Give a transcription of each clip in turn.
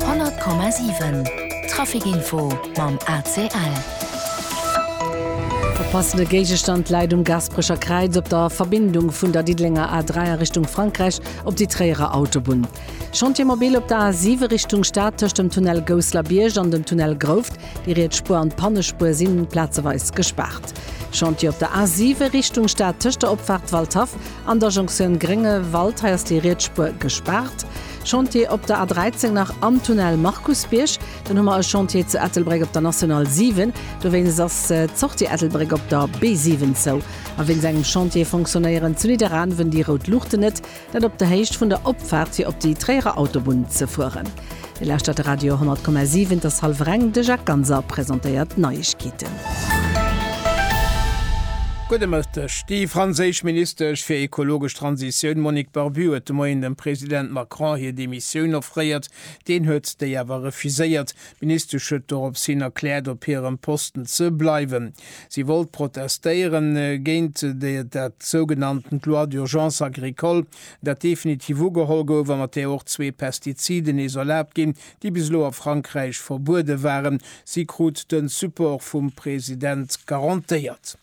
100,7 Trafic info mam ACL. E passende Géigestand läit um Gasperecher Kräiz op der Verbindung vun der Diddelenger A3 a Richtung Frankräich op déi Tréierer Autobunn. Chantier mobile op der A7 Richtung Stad tëscht dem Tunnel Gousslerbierg an dem Tunnel Grouft. Déi riets Spuer an d'Pannespuer sinn plazeweis gespaart. Chantier op der A7 Richtung Stad tëscht der Opfaart Waldhaff An der Jonktioun Gréngewald, hei ass déi Rietsspuer gespaart. Chantier op der A13 nach am Tunnel Markusbierg. Dann hu mer e Chantier zu Ettelbréck op der National 7. Dowéinst ass d'Sortie Ettelbréck op der B7 zou. A wéinst engem Chantier fonctionnéieren zu Nidderaanwen déi rout Luuchten net. Dat op der Héicht vun der Opfaart fir op déi Tréierer Autobunn ze fueren. Dir lauschtert de Radio 10,7, et ass hallwer eng, de Jacques Ganser presentéiert d'Neiegkeeten. Gudde Mëtteg. Déi franséisch Ministesch fir ekologesch Transitioun Monique Barbue huet de Moien dem President Macron hir Demissioun offréiert. Deen huet déi awer refuséiert. D'Ministesch huet dorops hin erkläert, op hirem Posten ze bleiwen. Si wollt protestéieren géint dat sougenanntent Loi d'urgence agricole. dat definitiv ugeholl gouf a mat där och zwee Pestiziden nees erlaabt ginn, déi bis elo a Frankräich verbuede waren. Si krut de Support vum President garantéiert.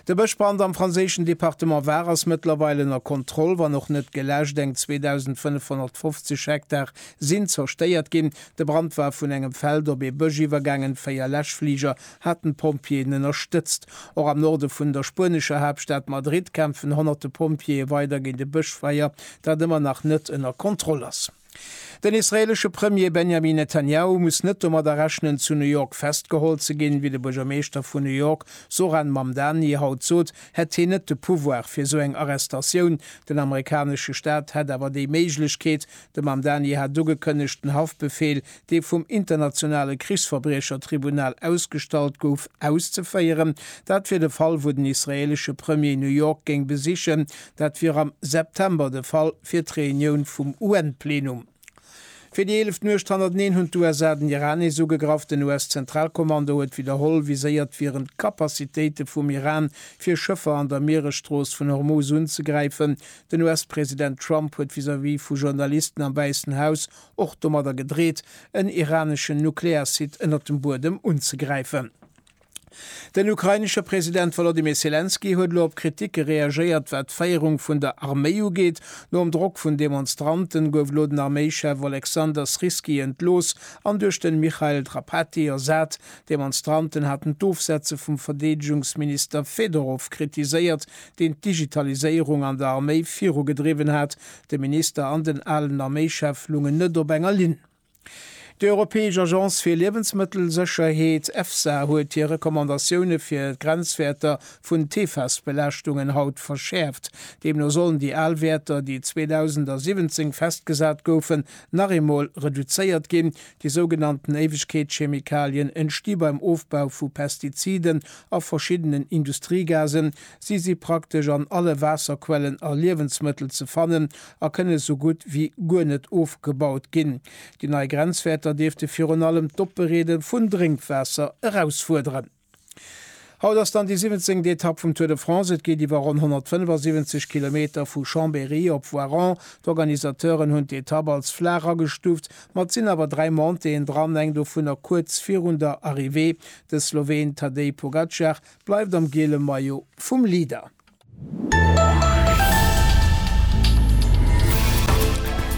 De Bëschbrand am franséischen Departement Var ass mëttlerweil ënner Kontroll, wann och net geläscht. Eng 2.550 Hektar sinn zerstéiert ginn. De Brand war vun engem Feld op ee Bësch iwwergaangen, véier Läschfliger haten d'Pompjeeën ënnerstëtzt. Och am Norde vun der spuenescher Haaptstad Madrid kämpfen honnerte Pompjeeë weider géint e Bëschfeier, dat ëmmer nach net ënner Kontroll ass. Den israeelesche Premier Benjamin Netanjahu muss net domadder rechnen, zu New York festgeholl ze ginn. Wéi de Buergermeeschter vun New York Zohran Mamdani haut sot, hätt hien net de Pouvoir fir esou eng Arrestatioun. Den amerikanesche Staat hätt awer déi Méiglechkeet. De Mamdani hat ugekënnegt, den Haftbefeel dee vum Internationale Krichsverbriechertribunal ausgestallt gouf, auszeféieren. Dat wier de Fall, wou den israeelesche Premier New York géing besichen. Dat wier am September de Fall, fir d'Reunioun vum UN-Plenum. Fir déi eeleft Nuecht hannerteneen hunn d'USA den Iran nees ugegraff. Den US-Zentralkommando huet widderholl viséiert, wieren d'Capacitéite vum Iran, fir Schëffer an der Mieresstrooss vun Hormuz unzegräifen. Den US-President Trump huet vis-à-vis vu Journalisten am Wäissen Haus och domadder gedreet, en iraneschen Nuklearsite ënnert dem Buedem unzegräifen. Den ukrainesche President Wolodymyr Selenskyj huet elo op Kritike reagéiert, wat d'Féierung vun der Arméi ugeet. Nom Drock vun Demonstranten gouf elo den Arméichef Oleksandr Syrskyi entlooss an duerch den Mikhail Drapatyi ersat. D'Demonstranten haten d'Ofsetze vum Verdeedegungsminister Fedorov kritiséiert, deen d'Digitaliséierung an der Arméi virugedriwwen hat. De Minister an den alen Arméischef lungen net op enger Linn. Déi Europäesch Agence fir Liewensmëttelsécherheet, EFSA, huet hir Recommandatioune fir d'Grenzwäerter vun d'PFAS-Belaaschtungen haut verschäerft. Deemno sollen déi al Wäerter, déi 2017 festgesat goufen, nach eemol reduzéiert ginn. Déi sougenannten Éiwegkeetschemikalien entsti beim Ofbau vu Pestiziden a verschiddenen Industriegasen, Si si praktesch an alle Waasserquellen a Liewensmëttel ze fannen a kënne sou gutt ewéi guer net ofgebaut ginn. Déi nei Grenzwäerter dierfte virun allem d'Opbereede vun Drénkwaasser erausfuerderen. Haut ass dann déi siwwenzéngt Etapp vum Tour de France. Et geet iwwer ronn 175 Kilometer vu Chambéry op Voiron. D'Organisateuren hunn d'Etapp als flaach agestuuft, ma et sinn awer dräi Montéeën dran, eng dovunner kuerz virun der Arrivée. De Sloween Tadej Pogacar Bleift am geele Maillot vum Leader!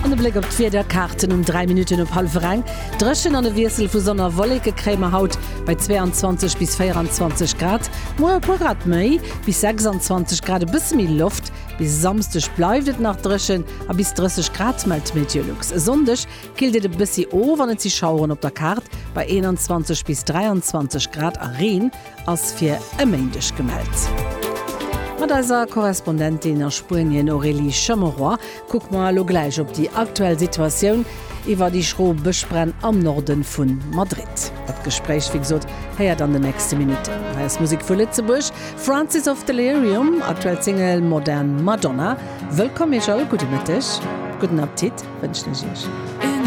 An e Bléck op d'Wiederkaarten um 3 Minutten op hallwer eng. Dréchen an e Wiessel vu Sonn a Wolleke kréie mer haut bei 22 bis 24 Grad. Muer e puer Grad méi, bis 26 Grad, e bësse méi Loft. Bis e Samsdeg bleift et nach dréchen a bis 30 Grad, mellt d'Mediolux. E Sonndeg killt et e bëssi of an et si Schaueren op der Kaart bei 21 bis 23 Grad a Reen. ass fir e Méindeg gemellt. Mat eiser Korrespondentin a Spuenien Aurélie Chameroy kucke mer elo gläich op déi aktuell Situatioun iwwer déi schro Bëschbränn am Norde vu Madrid. Dat Gespréich, wéi gesot, héiert an den nächste Minutten. Hei ass Musek vu Lëtzebuerg, Francis of Delirium, aktuell Single Modern Madonna. Wëllkomm Iech all, gudde Mëtteg, gudden Appetit wënschen ech Iech.